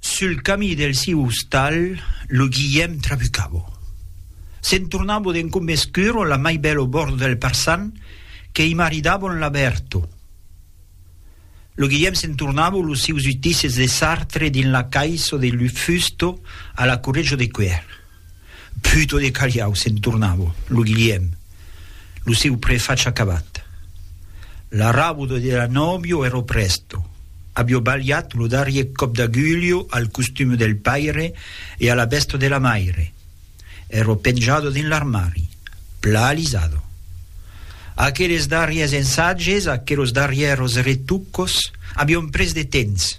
Sul camí del siu ostal, lo Guilhèm trabucavo. Se'n tornavo d'en Combescuro la mai bèl au bòrd del Parçan que i maridavon la Berto. Lo Guilhèm se'n tornavo los sius utisses de Sartre dins la caissa de Lufusto a la Correjo de Cuer. Puto de calhau, se'n tornavo, lo Guilhèm, lo seu prefatge acabat. L'arrabodo de la nòvio ero presto, avio balhat lo darrier còp d'agulho al costume del paire e a la vèsta de la maire. Ero penjado dins l'armari, pla alisado. Aqueles darriers ensatges, aquelos darrièros retucos, avion pres de temps.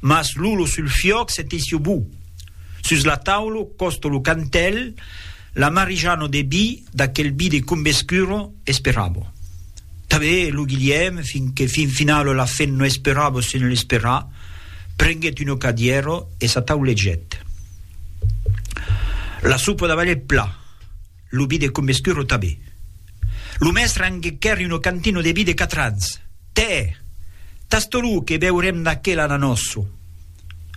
Mas lo lo sul fiòc se tesió bu. Sus la taula, còsto lo cantèl, l'amarijano de bi, d'aquel bi de cumbe escuro, esperàvo. Tanben lo Guilhèm, fin que fin finala la fin no esperàvo se ne l'esperar, prenguèt una cadièra e s'ataulegèt. La sopa d'abalèt pla. Lo bi de Commescuro tabé. Lo mèstre anguequèri uno cantino de bi de quatre ans. Tè! Tasto lo que beurem d'aquel ananòso.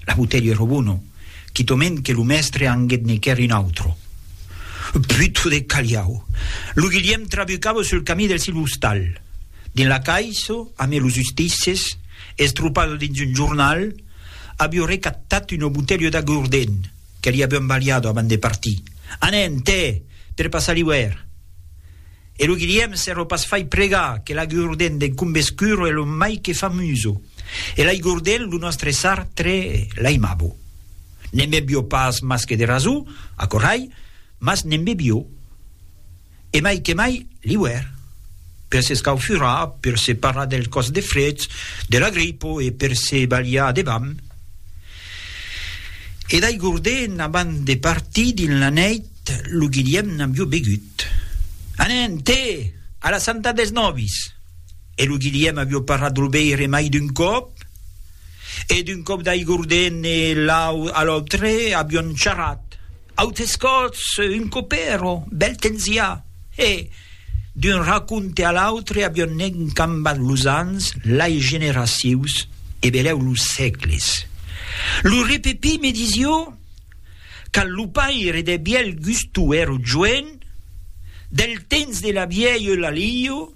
La botelha ero bono, quitoment que lo mèstre anguetnequèri un autro. Puto de Caliau! Lo Guilhèm trabucava sul camí del sil ostal. Dins la caissa, amé los ustisses, estropada dins un jornal, avió recatat una botelha d'agordent. que li avion balhado abans de partir, Anem, tè! per passar l'iuèrn! E lo Guilhèm se lo pas fai pregar que l'agurden d'en Combescuro es lo mai que famuso, e l'aigurden lo nòstre sar tre l'aimabo. Ne'n bevió pas mas que de rasor, aquò rai, mas ne'n bevió. E mai que mai l'iuèr, per s'escaufurar, per se parar del còs de fred, de la gripa e per se balhar de vam. E d'aigorde'n abans de partir dins la nèit lo Guilhèm n'avió begut. Anem, te! A la santa dels nòvis! E lo Guilhèm avió parat lo veire mai d'un còp, e d'un còp d'aigorde'n e l'au a l'autre avión charrat. Autes còps, un copèro, bèl temps i a, e, d'un raconte a l'autre, avion nenh cambat los ans, lai generacius, e belèu los sècles. Lo repepí me disió, quand lo paire de Bièlgusto èro joen, del temps de la vièlh Eulalio,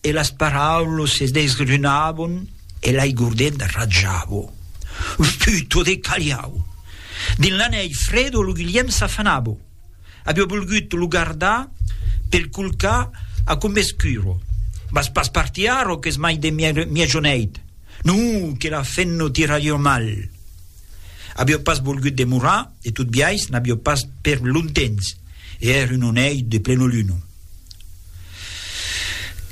e las paraulos se desgrunavon e l'aigordet ratjavo. Sputo de caliau! Dins la nèi fredo lo Guilhèm s'afanavo. Avió volgut lo gardar pel colcar a Combescuro. Vas pas partir arro qu'es mai de mièjoneit. Non, que la fenno tira jo mal! Avió pas volgut demorar e tot biais n'avió pas per longtemps e èra un onei de plenoluna.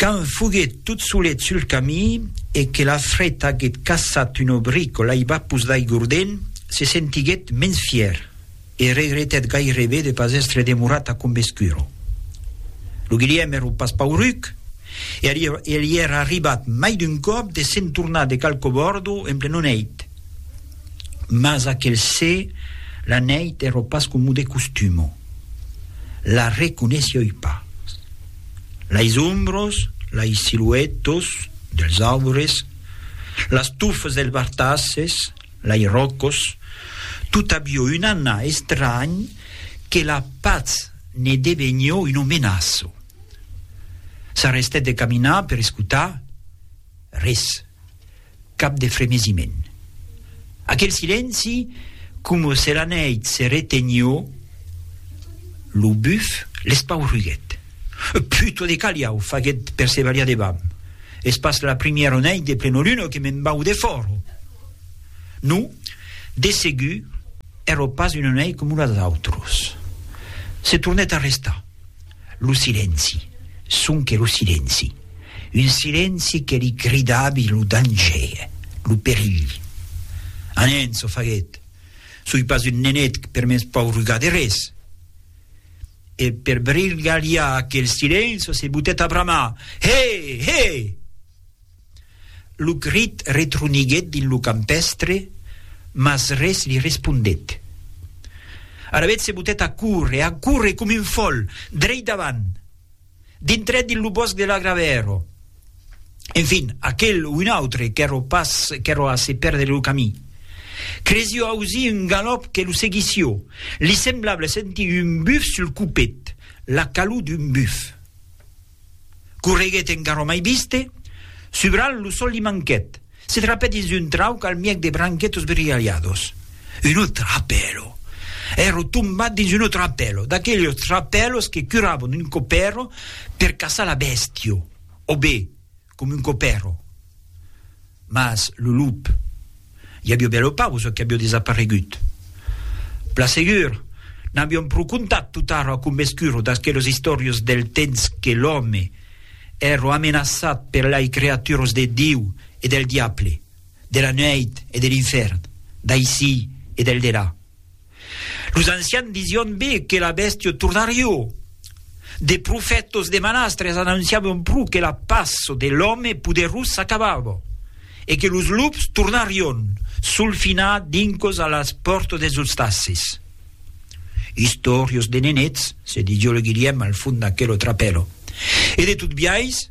Quand foguèt tot solet sul camin e que la fret aguèt caçat un obric o l'aibapus d'aigordent, se sentiguèt mens fièr e regretèt gairebe de pas èstre demorat a Combescuro. Lo Guilhèm èra pas pauruc e li èra arribat mai d'un còp de se'n tornar de Calcobòrdo en plenon hèit. Mas aquel se, la nèit èrò pas comu de costumo. La reconeishioi pas. Lais ombros, lais siluetos dels aubres, las tufas dels bartasses, lais ròcos, tot avió un anà estranh que la patz ne devenió un omenaço. S'arrestèt de caminar per escotar. Res. Cap de fremesiment. Aquel silenci, coma se la nèit se retenió, lo buf l'espaurruguèt. Puto de calhau! faguèt per se balhar debam. Es pas la primièra nèit de plenoluna que me'n vau de fòro. Non, de segur, èra pas una nèit coma las autras. Se tornèt a restar. Lo silenci, sonque lo silenci. Un silenci que li cridavi lo danger, lo perilh. A nen, çò faguèt. Soi pas un nenet per m'es paurugar de res. E per brilgalhar aquel silenci se botèt a bramar, He! He! Lo crit retroniguèt dins lo campèstre, mas res li respondèt. Alavetz se botèt a córrer, a córrer com un fòl, dreit davant. Dintrèt dins lo bòsc de l'agravèro. Enfin, aquel o un autre qu'èro pas qu'èro a se pèrdre lo camí. Cresió ausir un galòp que lo seguissió. Li semblable sentir un buf sul copet, la calor d'un buf. Correguèt en garró mai viste, subralh lo sol li manquèt, se trapèt dins un trauc al mièg de branquets esbrilhalhados. Un autre trapèlo! Èró tombat dins un autre trapèlo, d'aquelhos trapèlos que curabon un copèro per caçar la bèstia, o be, Com un copèro. Mas lo lup i avió bèl o pau çò qu'avió desaparegut. Plan segur, n'avión pro contat totara a convescuro d'aquelos istòrios del temps que l'òme ero amenaçat per lai creaturos de Diu e del diable, de la nuèit e de l'infèrn, d'aicí e del delà. Los ancians dision be que la bèstio tornarió. De profètos de manastres anonciavan pro que la paço de l'òme poderós s'acabava e que los lups tornarion solfinar dincos a las pòrtas des ostacis. Istòrios de nenets, se didio lo Guilhèm al fond d'aquelo trapèlo. E de tot biais,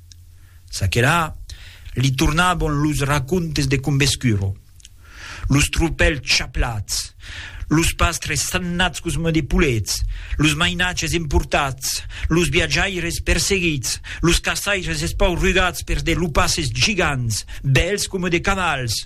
Çaquelà, li tornabon los racontes de Combescuro, los tropèls chaplats, los pastres sannats cosmè de polets, los mainatges emportats, los viatjaires perseguits, los caçaires espaurugats pers de lupasses gigants, bèls coma de cavals.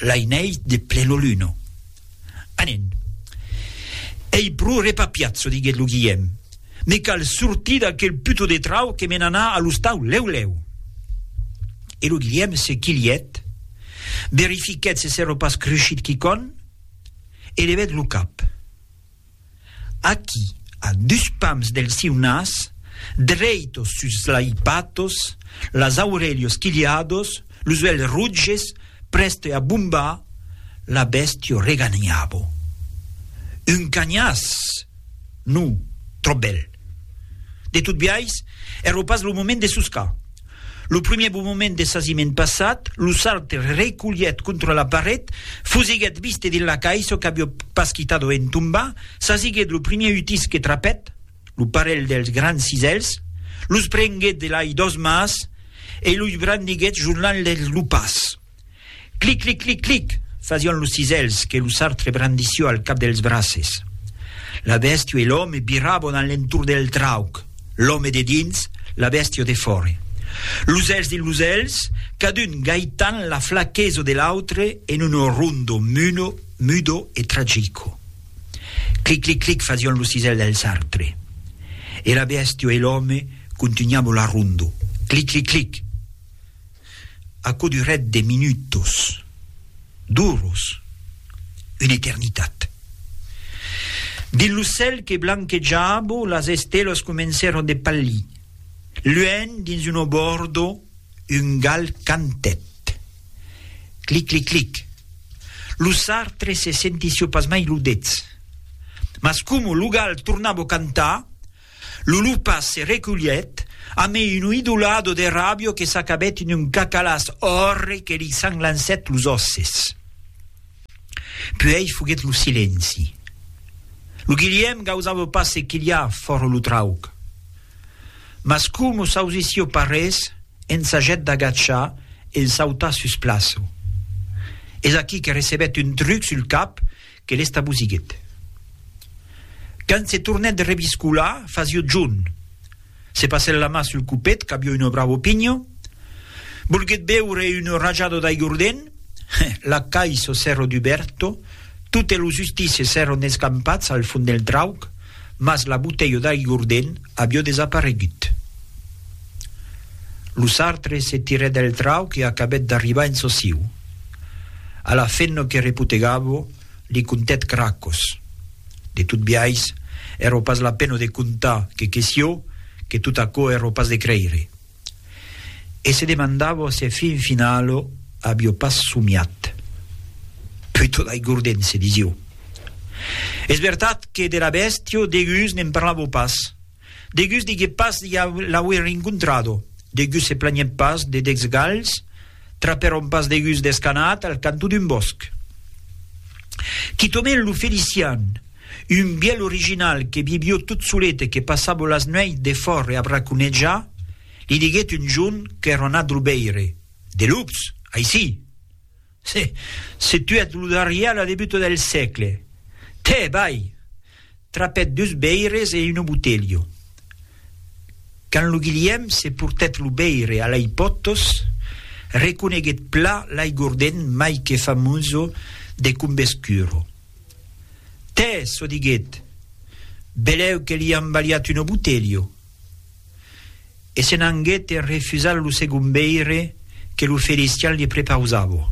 l'ainèit de pleno luno. Anen. Ei pro repapiazo, diguèt lo Guilhèm. Me cal sortir d'aquel puto de trau que me n'anar a l'ostau lèu-lèu. E lo Guilhèm se quilhèt, verifiquèt se s'èra pas crushit quicòm e levèt lo cap. Aquí, a dus pams del siu nas, dreitos sus lai patos, las aurelhos quilhados, los uelhs rotges, prèste a bombar, la bèstio reganhavo. Un canhàs! Non, tròp bèl. De tot biais, èro pas lo moment de soscar. Lo primièr bombament de sasiment passat, lo sarde reculhèt contra la paret, fusiguèt viste dins la caissa qu'avió pas quitado en tombar, sasiguèt lo primièr utís que trapèt, lo parelh dels grans cisèls, los prenguèt de lai dos mas e los brandiguèt jornant-les lo pas. Clic, clic, clic, clic! fasión los cisèls que lo sartre brandissió al cap dels braces. La bèstió e l'òme virabon a l'entorn del trauc, l'òme de dins, la bèstió de fòre. Los èls dins los èls, cadun gaitant la flaqueso de l'autre en uno rondo, muno, mudo e tragico. Clic, clic, clic! fasión los cisèls del sartre. E la bèstió e l'òme contunhabon la rondo. Clic, clic, clic! Aquò durèt de minutos, d'oros, una eternitat. Dins lo cèl que blanquejava, las estelas comencèron de palhir. Luènh, dins un obòrdo, un gal cantèt. Clic-clic-clic. Lo sartre se sentissió pasmai lo dets. Mas coma lo gal tornava cantar, Lulupa se reculhèt, amé un oidolado de ràbio que s'acabèt en un cacalàs òrre que li sanglancèt los òsses. Puèi foguèt lo silenci. Lo Guilhèm gausava pas se quilhar fòra lo trauc. Mas coma s'ausissió pas res, ensajèt d'agachar e en sautar sus plaço. Es aquí que recebèt un truc sul cap que l'estabosiguèt. Quand se tornèt reviscolar, fasió John. Se passèt la mà sul copet, qu'avió una bravo pinho. Volguèt beure un rajado d'aigordent. La caiso s'èro duberto. Totes los ustices èron escampats al fond del trauc. Mas la boutelha d'aigüordent avió desaparegut. Lo sartre se tirèt del trau que acabèt d'arribar en sociu. A la fen lo que repotegavo li contèt cracos. De tot biais, èro pas la pena de contar que queció, que tot aquò èro pas de creire. E se demandavo se fin finalo avio pas somiat. Puto d'aigordense, disio. Es vertat que de la bèstia degus ne'n parlavo pas. Degus diguec pas de l'auer rencontrado, degus se planhèt pas de decs galhs, trapèron pas degus descanat al canto d'un bòsc. Quitament lo Felician, Un bièlh original que vivió tot solet e que passavo las nuèits defòra a braconejar, li diguèt un jorn qu'èra anat lo veire. De lups, aicí! Se, se tuèt lo darrièr a la debuta del sègle. Tè, vai! Trapèt dus veires e una botelha. Quand lo Guilhèm se portèt lo veire a lei pòtos, reconeguèt plan l'aigordent mai que famoso de Combescuro. Tè, çò diguèt, belèu que li an balhat un obutelho. E se n'anguèt en refusar lo segon veire que lo Felician li prepausava.